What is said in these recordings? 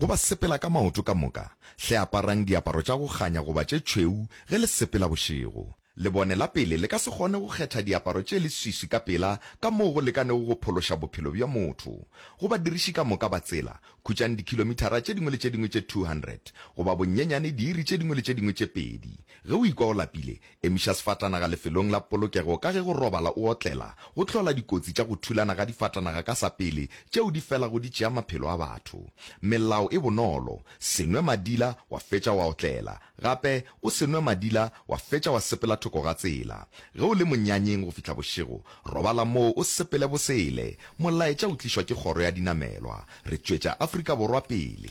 Go ba sepela ka maoto ka moka, hle aparang diaparo tša go kganya goba tše tšhweu ge le sepela bošego. Lebone la pele le ka se kgone go kgetha diaparo tše leswiswi ka pela ka moo go lekanego go phološa bophelo bja motho. Go badiriši ka moka ba tsela, khutšang dikhilomithara tše dingwe le tše dingwe tše 200, goba bonyenyane diiri tše dingwe le tše dingwe tše pedi. Ge o ikwa o lapile, Emiša sefatanaga lefelong la polokego ka ge go robala o otlela go hlola dikotsi tša go thulana ga difatanaga ka sapele tšeo di felago di tšea maphelo a batho. Melao e bonolo, Se nwe madila wa fetša wa otlela. Gape, o se nwe madila wa fetša wa sepela thoko ga tsela. Ge o le monyanyeng go fihla bošego, robala moo o sepele bosele. Molaetša o tlišwa ke Kgoro ya Dinamelwa. Re tšwetša Afrika Borwa pele.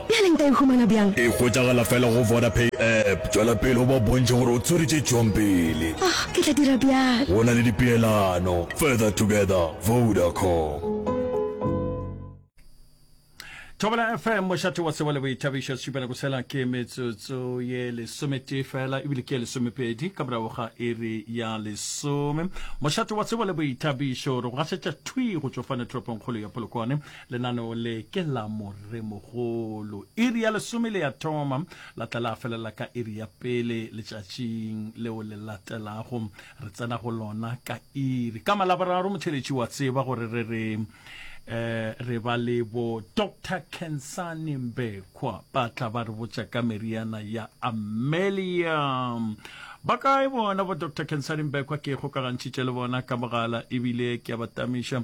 Bjale nka e humana bjang? E hwetšagala fela go Vodapay app. Tšwela pele o ba bontšhe gore o tswere tše tšwang pele. Oh, ke tla dira bjalo. Go na le dipeelano. Further together, Vodacom. Thobela FM, mošate wa tsebo le boithabišo, setšupela go sela ke metsotso ye lesometee fela ebile ke lesomepedi ka morago ga iri ya lesome. Mošate wa tsebo le boithabišo re go gasetša thwi go tšofane toropongkgolo ya Polokwane. Lenaneo le ke la Moremogolo. Iri ya lesome le ya thoma, la tla la felela ka iri ya pele letšatšing leo le latelago. Re tsena go lona ka iri ka Malaboraro. Motheeletši wa tseba gore re re eh, re ba le bo Dr Khensani Mbekwa ba tla ba re botša ka meriana ya Amelia. Ba kae bona bo Dr Khensani Mbekwa? Ke kgokagantšhitše le bona ka mogala ebile ke a ba tamiša.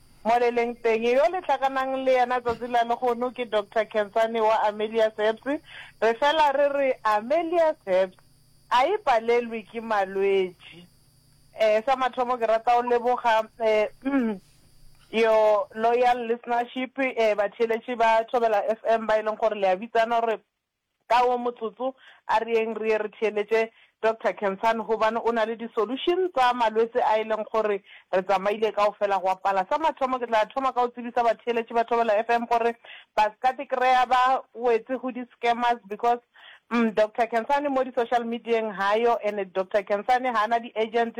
Mo le leng teng, yo le hlakanang le yena tsatsi la lehono ke Doctor Khensani wa Amelia's Herbs. Re fela re re Amelia's Herbs a e palelwe ke malwetši. Eh, sa mathomo ke rata go leboga eh, your loyal listenership, eh, batheeletši ba Thobela FM ba e leng gore le a bitsana gore Ka wo motsotso, a reeng re ye re theeletše Doctor Kensani gobane o na le di-solution tsa malwetse a e leng gore re tsamaile kaofela gwa pala. Sa mathomo ke tla thoma ka go tsebisa batheeletši ba Thobela FM gore ba se ka tikreya ba wetse go di-scammers because umm Doctor Kensani mo di-social medieng ga yo and Doctor Kensani ga a na di-agent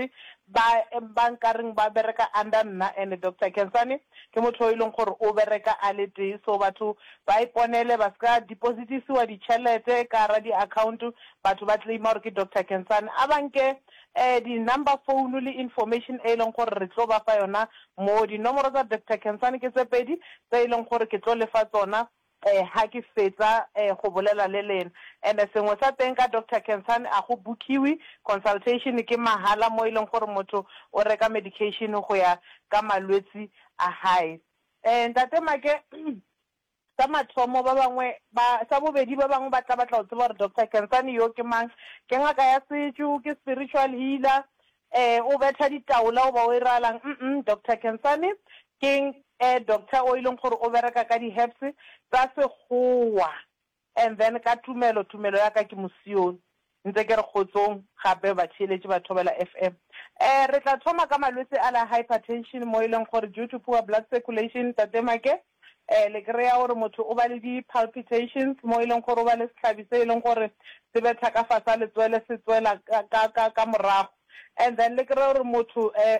ba ba nkareng ba bereka under nna and Doctor Kensani ke motho yo e leng gore o bereka a le tee so batho ba iponele, ba se ka depositisiwa ditšhelete ka gara diakhaonto, batho ba claima gore ke Doctor Kensane, a ba nke um di-number phone le information e e leng gore re tlo ba fa yona moo. Dinomoro tsa Doctor Kensane ke tse pedi tse e leng gore ke tlo le fa tsona um ha ke fetsa um go bolela le lena. And-e sengwe sa teng ka Doctor Kensane, a go book-iwe, consultation ke mahala mo e leng gore motho o reka medication go ya ka malwetse a hae. Ee, Ntate Make, sa mathomo, ba bangwe ba, sa bobedi, ba bangwe ba tla batla go tseba gore Doctor Kensani yo ke mang. Ke ngaka ya setšo? Ke spiritual healer? Ee, o betha ditaola goba o iralang? Umm, Doctor Kensani ke, eh, doctor o e leng gore o bereka ka di-herbs tsa Sekgowa. And then ka tumelo, tumelo ya ka ke Mosione. Ntse ke re kgotsong gape batheeletši ba Thobela FM. Eh, re tla thoma ka malwetse a la hypertension mo e leng gore due to poor blood circulation, Tate Make, eh, le kry-a gore motho o ba le di palpitations mo e leng gore o ba le sehlabi se e leng gore se betha ka fasa letswele se tswela ka, ka, ka, ka morago. And then le kry-e gore motho, eh,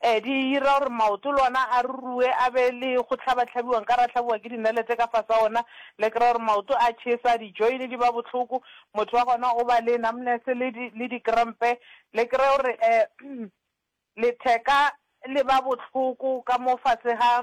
Ee, di ira gore maoto le ona a ruruwe, a be le go hlabahlabiwa, nka re a hlabiwa ke dinalete ka fase ga ona, le kry-e gore maoto a tšhesa, di-join di ba bohloko, motho wa gona o ba le numbness le di, le di-cramp-e, le kry-e gore um letheka le ba bohloko ka mo fase ga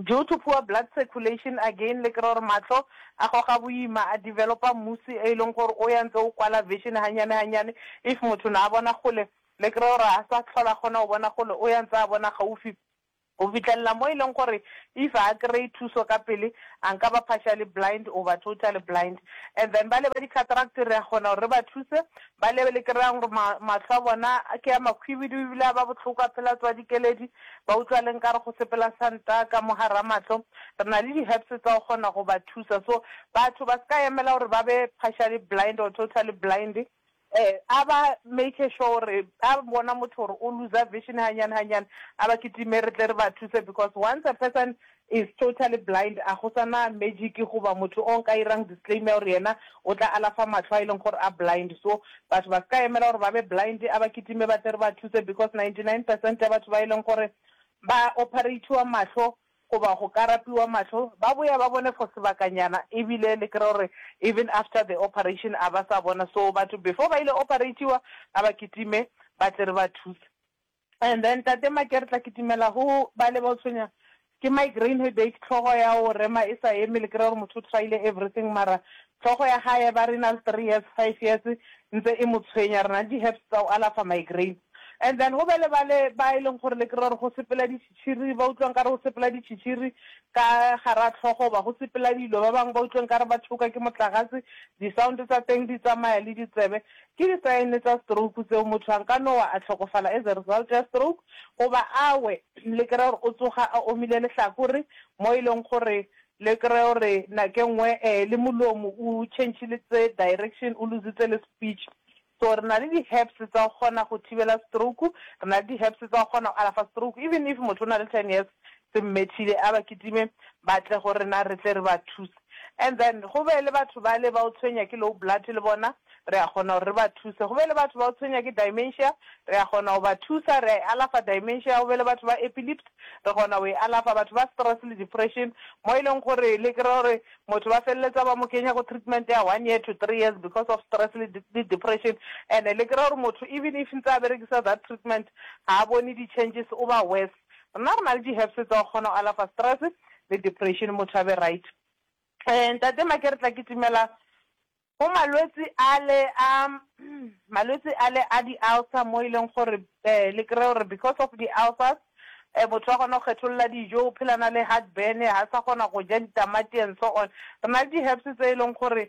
Due to poor blood circulation again le kry-a gore mahlo a goga boima, a developer mmusi e leng gore o ya ntse o kwala vision hanyane hanyane, if motho ne a bona kgole le kry-e gore ha sa tlhola kgona go bona kgole o ya ntse a bona gaufi go fitlhelela mo e leng gore if ha a kry-e thuso ka pele a nka ba partially blind goba totally blind. And then bale ba di-cataract re a kgona gore re ba thuse Ba le le kry-ang gore ma, mahlo a bona ke a makhwibidu ebile a ba bohloko, a phela a tswa dikeledi, ba utlwa le nkare go sepela santa ka mo gara mahlo. Re na le di-herbs tsa go kgona go ba thusa. So, batho ba se ka emela gore ba be partially blind or totally blind. Eh, a ba make sure gore a bona motho gore o looser vision hanyane hanyane, a ba kitime re tle re ba thuse because once a person is totally blind a go sa na magic goba motho o nka irang disclaim ya gore yena o tla alafa mahlo a e leng gore a blind so batho ba se ka emela gore ba be blind a ba kitime ba tle re ba thuse because 99 percent ya batho ba e leng gore ba operatiwa mahlo goba go ka rapiwa mahlo ba boya ba bone for sebakanyana e bile le kry gore even after the operation a ba sa bona so batho before ba ile operatiwa a ba kitime ba tle re ba thuse. And then tate Make re tla kitimela go ba le ba o tshwenya ke migraine headache hlogo ya o rema e sa eme le kry-a gore motho o tryile everything mara hlogo ya gae ba re e na le three years five years ntse e mo tshwenya re na le di herbs tsa o alafa migraine and then go be le ba le ba e leng gore le kry-a gore go sepela ditšhitšhiri ba utlwang ka re go sepela ditšhitšhiri ka gara tlhogo ba go sepela dilo ba bangwe ba utlweng ka re ba thoka ke motlagase di-sound tsa teng di tsamaya le ditsebe Ke di sign tsa stroke tseo, motho a nka no wa a hlokofala as a result ya stroke, goba a we le kry-e gore o tsoga a omile lehlakore, mo e leng gore le kry-e gore nake ngwe le molomo o change-letse direction, o lose-itse le speech. So re na le di herbs tsa go kgona go thibela stroke, re na le di herbs tsa go kgona go alafa stroke, even if motho o na le ten years se mmethile, a ba kitime ba tle go rena re tle re ba thuse. And then go be le batho bale ba o tshwenya ke low blood le bona re a kgona gore re ba thuse. Go be le batho ba o tshwenya ke dimentia re a kgona go ba thusa, re a e alafa dimentia. Go be le batho ba epilept re kgona go e alafa. Batho ba stress le depression mo e leng gore le kry-a gore motho ba feleletsa ba mo kenya go treatment ya one year to three years because of stress le le depression. And-e le kry-a gore motho even if ntse a berekisa that treatment ga a bone di changes o ba worse. Rena re na le di herbs tsa go kgona go alafa stress le depression motho a be right. Ee ntate Make re tla kitimela go malwetsi ale a malwetsi ale a di ulcer mo e leng gore le kry-e gore because of di ulcers motho wa kgona go kgetholola dijo o phela na le heart burn ha sa kgona go ja ditamati and so on. Re na le di herbs tse e leng gore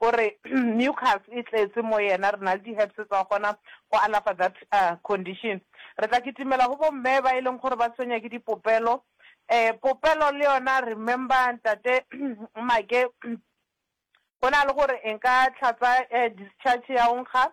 O re, Mucus e tletše mo yena, re na le di-herbs tsa go kgona go alafa that condition. Re tla kitimela go bomme ba e leng gore ba tshwenya ke dipopelo. Um, popelo le yona, remember Ntate Make, go na le gore e nka tlhatsa discharge ya go nkga,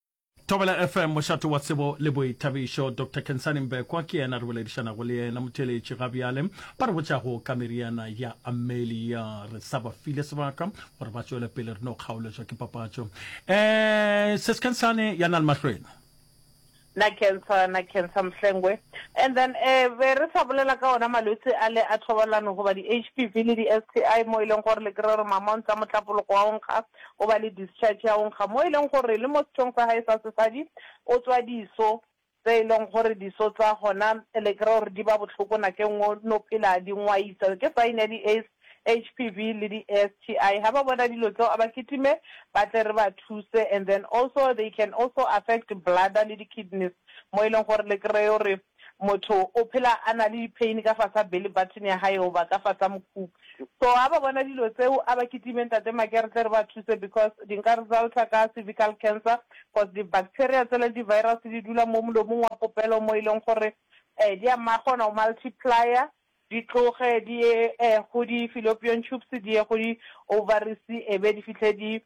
Thobela FM, mošate wa tsebo le boithabišo. Doctor Kensani Mbekwa ke yena re boledišanago le yena, motheeletši ga bjale. Ba re botšago ka meriana ya Amelia, re sa ba file sebaka gore ba tšwele pele, re no kgaoletswa ke papatšo. Eh, Sis Kensani ya na le mahlweno. Na cancer, na cancer Mhlengwe. And then eh be re sa bolela ka ona malwetse a le a thobalano goba di-HPV le di-STI mo e leng gore le kry-e gore mamontsa motlapologo wa o nkga. O ba le discharge ya go nkga mo e leng gore le mo sethong sa gae sa sesadi o tswa diso tse e leng gore diso tsa gona le kry-a gore di ba bohloko nakeng o no phela di ngwaisa ke sign ya di-aids, HPV le di-STI. Ha ba bona dilo tseo a ba kitime ba tle re ba thuse and then also they can also affect bladder le di-kidneys mo e leng gore le kry-e gore Motho o phela a na le dipain ka fasa belly button ya hae goba ka fasa mokhubu. So ga ba bona dilo tseo a ba kitime Ntate Make re tle re ba thuse because di nka resulta ka cervical cancer cause di bacteria tsela le di virus di dula mo molomong wa popelo mo e leng gore um di a kgona go multiplier di tloge di ye um go di fallopian tubes di ye go di ovaries e be di fihle di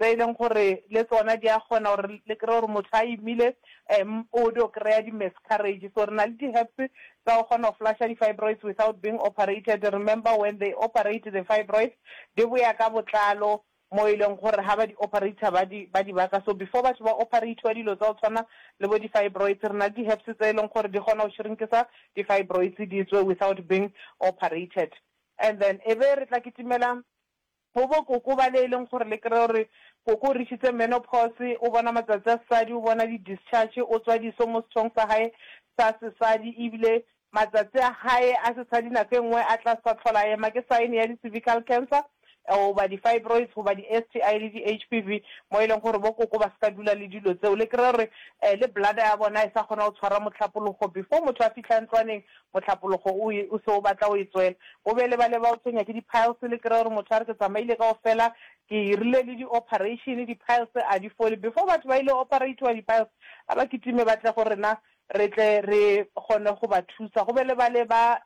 tse e leng gore le tsona di a kgona gore le kry-e gore motho a imile um o dio kry-a di-miscarriage. So re na le di-herbs tsa go kgona go flusher di-fibroids without being operated. Remember when they operate the fibroids, di boya ka botlalo mo e leng gore ha ba di operator ba di ba di baka. So before batho ba operatiwa dilo tsa go tshwana le bo di-fibroids, re na le di-herbs tse e leng gore di kgona go shrinkisa di-fibroids di tswe without being operated. And then e be re tla kitimela Go bo koko bale e leng gore le kry-e gore koko o reachitse menopause, o bona matsatsi a sesadi, o bona di discharge, o tswa diso mo sethong sa gae sa sesadi ebile matsatsi a gae a sesadi nako e nngwe a tla sa tlhola a ema ke sign ya di cervical cancer goba di fibroids goba di STI le di HPV mo e leng gore bo koko ba se ka dula le dilo tseo le kry-e gore le bladder ya bona e sa kgona go tshwara mohlapologo before motho a fitlha ntlwaneng Mohlapologo o e, o se o batla o e tswela. O be le ba le ba o tshwenya ke di-piles, le kry-e gore motho a re, Ke tsamaile kaofela, ke irile le di-operation, di-piles a di fole. Before batho ba ile operatiwa di-piles, a ba kitime ba tle go rena, re tle re kgone go ba thusa. Go be le ba le ba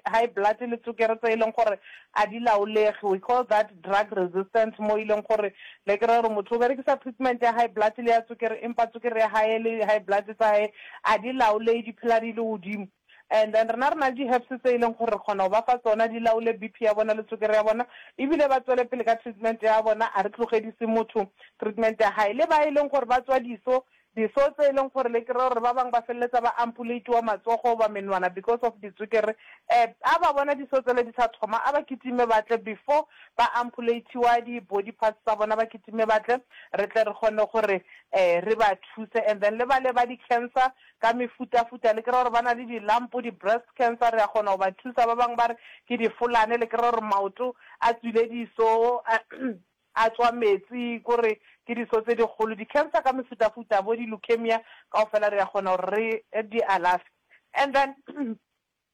high blood le tsokere tse e leng gore a di laolege, we call that drug resistance, mo e leng gore le kry-a gore motho o berekisa treatment ya high blood le ya tswekere empa tswekere ya hae le high blood tsa hae a di laolehe di phela di le godimo. And then rena re na le di-herbs tse e leng gore re kgona go ba fa tsona di laole BP ya bona le tswekere ya bona ebile ba tswele pele ka treatment ya bona, a re tlogedise motho treatment ya hae. Le ba e leng gore ba tswa diso Diso tse e leng gore le kry-a gore ba bangwe ba feleletsa ba ampuleitiwa matsogo goba menwana because of ditswekere. Um ha ba bona diso tsele di sa thoma a ba kitime ba tle before ba ampuleitiwa di body parts tsa bona ba kitime ba tle re tle re kgone gore um re ba thuse. And then le bale ba di cancer ka mefutafuta le kry-a gore ba na le di lump, di breast cancer re a kgona go ba thusa. Ba bangwe ba re ke difolane le kry-a gore maoto a tswile diso. a tšwa meetse, ko re ke diso tse dikgolo, di-cancer ka mefutafuta, bo di-leukemia, kaofela re a kgona gore re di alafe. And then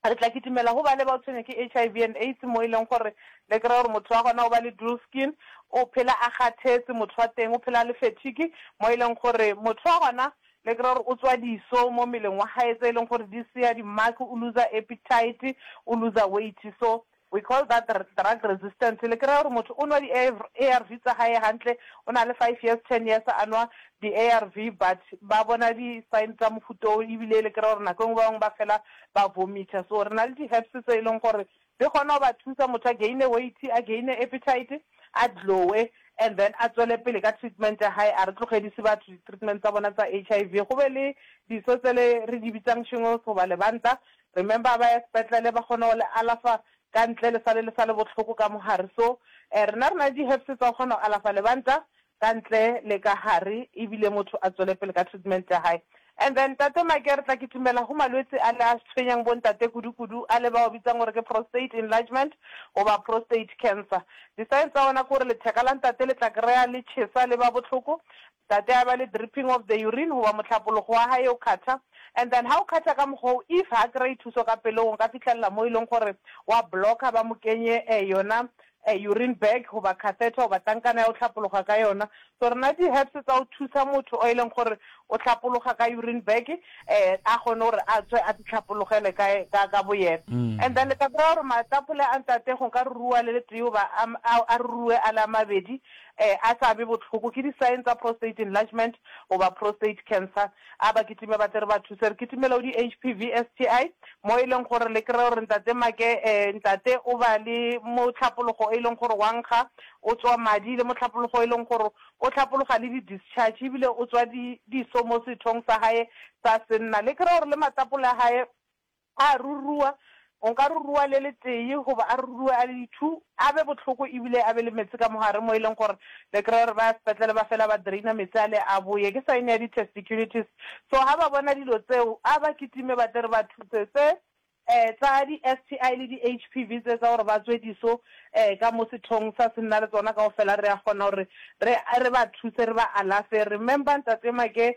re tla kitimela go bale bao tshwenywa ke HIV and AIDS, mo e leng gore le kry-e gore motho wa gona o ba le dual skin, o phela a kgathetse, motho wa teng o phela a le fatigue, mo e leng gore motho wa gona le kry-e gore o tswa diso mo mmeleng wa gae tse e leng gore di seya di-mark, o looser appetite, o looser weight. So We call that drug resistance. Le kry-a gore motho o nwa di-ARV tsa gae gantle, o na le five years, ten years a nwa di-ARV but ba bona di-sign tsa mofuta o ebile le kry-a gore nako e nngwe ba bangwe ba fela ba vomitha. So re na le di-herbs tse e leng gore di kgona go ba thusa motho a gaine weight, a gaine appetite, a glow-e and then a tswele pele ka treatment ya gae. A re tlogedise batho di-treatment tsa bona tsa HIV. Go be le diso tse le re di bitsang shingles goba lebanta, Remember ba ya sepetlele ba kgone go le alafa ka ntle le sale le sale bohloko ka mohare so eh rena rena le di herbs tsa go kgona go alafa lebanta ka ntle le ka hare ebile motho a tswele pele ka treatment ya hae and then ntate Make re tla kitimela go malwetse a le a tshwenyang bo ntate kudu kudu a le bao bitsang gore ke prostate enlargement goba prostate cancer di signs tsa ona ke gore letheka la ntate le tla kreya le tšhesa le ba bohloko Tate a ba le dripping of the urine goba mohlapologo wa hae o khatha, and then ha o khatha ka mokgwa oo, if ha kry-e thuso ka pelong o nka fihlelela moo e leng gore wa blocker ba mo kenye eh yona eh urine bag goba catheter goba tankana ya go hlapologa ka yona. So re na le di herbs tsa go thusa motho o e leng gore o hlapologa ka urine bag eh a kgone gore a tswe a di hlapologele ka ka ka boyena. And then le ka kry-a gore matapole a ntate go nka ruruwa le le tee goba a a a ruruwe a le a mabedi, A a sa be bohloko ke di-sign tsa prostate enlargement goba prostate cancer? A ba kitime ba tle re ba thuse, re kitimele go di-HPV, STI, mo e leng gore le kry-e gore Ntate Make, eh, ntate o ba le mohlapologo e leng gore wa nkga, o tswa madi, le mohlapologo e leng gore o hlapologa le di-discharge ebile o tswa di, diso mo sethong sa gae sa senna. Le kry-e gore le matapole a gae, A ruruwa, o nka ruruwa le le tee, goba a ruruwe a le di-two, a be bohloko e bile a be le meetse ka mogare mo e leng gore le kry-e gore ba ya sepetlele ba fela ba drainer meetse ale a boye. Ke sign ya di-testiculitis. So ha ba bona dilo tseo, a ba kitime ba tle re ba thuse. Tse um tsa di-STI le di-HPV tse tsa gore ba tswe diso um ka mo sethong sa se nna le tsona kaofela re a kgona gore re re ba thuse, re ba alafe. Remember Ntate Make,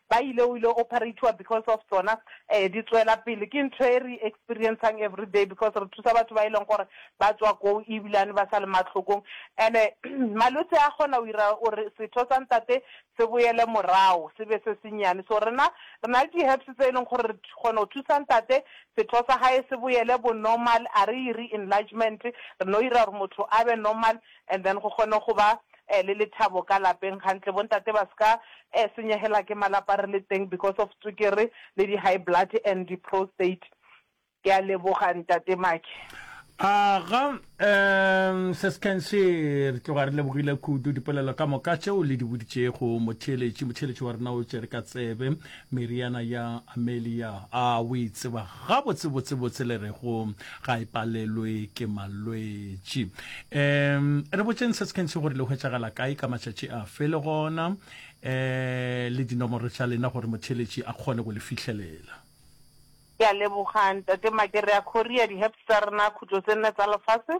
ba ile o ile operatiwa because of tsona um di tswela pele ke ntho e re experiencang everyday because re thusa batho ba e leng gore ba tswa koo ebilane ba sa le mahlokong and malwetse a kgona o ira gore setho sa ntate se boele morao se be se senyane so rena re na le di herbs tse e leng gore re kgona go thusa ntate setho sa gae se boele bo normal a re ire enlargement re no ira gore motho a be normal and then go kgone go ba eh le lethabo ka lapeng gantle bontate ba ska eh senyegela ke malapa re le teng because of tswekere le di high blood and di prostate ke a leboga ntate Maki. Aga um se sekense re tloga re lebogile kudu dipolelo ka moka tšeo le di boditšego motheeletši motheeletši wa rena o tšere ka tsebe Meriana ya Amelia a o e tseba gabotsebotsebotse le rego ga e palelwe ke malwetši. Um re botšeng se se kentšhi gore le hwetšagala kae ka matšatši a fe le gona um le dinomoro tša lena gore motheeletši a kgone go le fihlelela. Ke a leboga Ntate Makerea Khoria, di-herbs tsa rena khutlo tse nne tsa lefase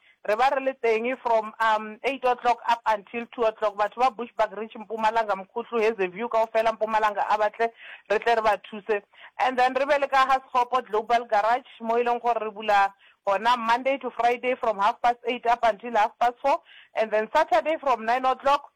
Re ba re le teng from um eight o'clock up until two o'clock. Batho ba Bushbuckridge, Mpumalanga, Mkhutlu, Hazyview kaofela Mpumalanga a ba tle re tle re ba thuse. And then re be le ka ga Sekgopo Global Garage mo e leng gore re bula gona Monday to Friday from half past eight up until half past four and then Saturday from nine o'clock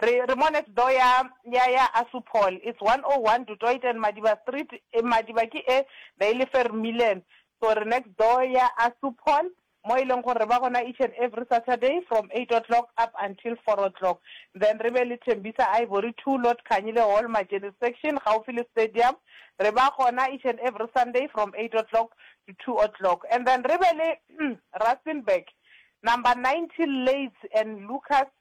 Re, re mo next door ya, ya, ya Assupol. It's 101 Du Toit and Madiba Street. E, Madiba ke e be e le Vermeulen. So re next door ya Assupol, mo e leng gore re ba gona each and every Saturday from eight o'clock up until four o'clock. Then re be le Thembisa Ivory Two Lord Khanyile Hall, Majeni Section, gaufi le Stadium. Re ba gona each and every Sunday from eight o'clock to two o'clock. And then re be le Rustenburg, number ninety Leys and Lucas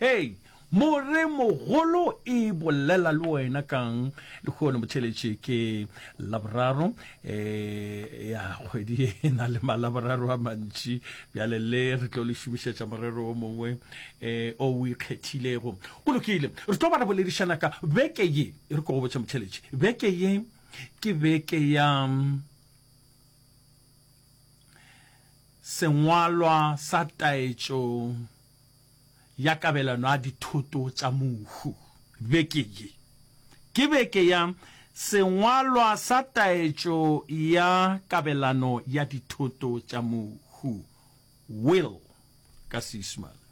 Hei, more mogolo e bolela le wena kang? Lehono motheletše ke laboraro e ya kgwedi e na le malaboraro a mantši bjale le re tlo le šomišetša morero o mongwe e o o ikgethilego go lokile re tlo ba re boledišana ka beke ye e re ko go botša motheletše beke ye ke beke ya sengwalwa sa taetšo ya kabelano ya dithoto tša mohu beke ye ke beke ya Sengwalwa sa Taetšo ya Kabelano ya Dithoto tša Mohu, Will, ka Seisemane.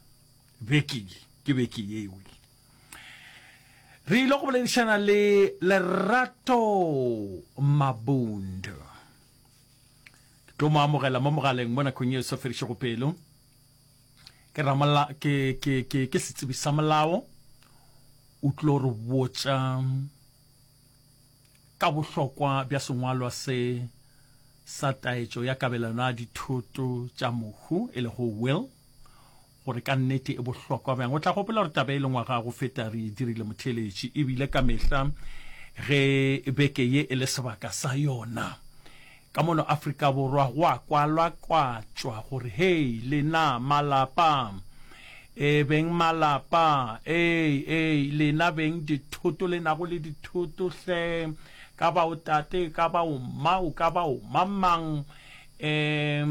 Beke ye ke beke ye e wile. Re ile go boledišana le Lerato Mabunda. Ke tlo mo amogela mo mogaleng mo nakong e sa ferišego pelo. ke ramala ke ke ke ke setsebi sa molao o tlo re botša ka bohlokwa bja sengwalwa se sa taetšo ya kabelano ya dithoto tša mohu e lego will gore ka nnete e bohlokwa bjang o tla gopola gore taba e le ngwaga go feta re e dirile motheeletši ebile ka mehla ge beke ye e le sebaka sa yona Ka mono Afrika Borwa go a kwalakwatšwa gore hei lena malapa, ee beng malapa, ee, ee, lena beng dithoto le nago le dithoto hle, ka ba o tate, ka ba o mma, o ka ba o mamang, ee,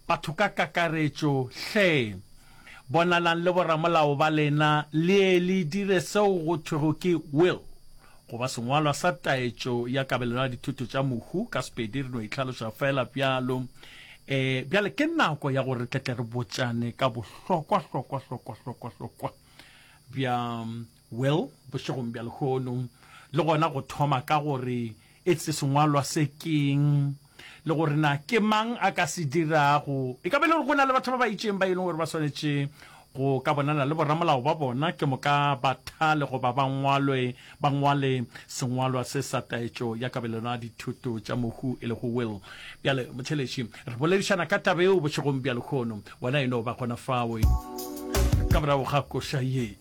Batho ka kakaretšo, hle! Bonalang le boramolao ba lena le ye le dire seo go thwego ke will, goba sengwalwa sa taetšo ya kabelano ya dithoto tša mohu, ka Sepedi re no e hlaloša feela bjalo. E, bjale ke nako ya gore re tle tle re botšane ka bohlokwa-hlokwa-hlokwa-hlokwa-hlokwa bja Will, Bošegong bja lehono, le gona go thoma ka gore e se sengwalwa se ke'ng, le gore na ke mang a ka se dirago. E ka ba e le gore go na le batho ba ba itšeng ba e leng gore ba swanetše go ka bonana le boramolao ba bona, ke moka ba thale goba ba ngwalwe, ba ngwale sengwalwa se sa taetšo ya kabelano ya dithoto tša mohu e lego will. Bjale, motheeletši, re boledišana ka taba yeo bošegong bja lehono. Wena e no ba gona fao ka morago ga koša ye.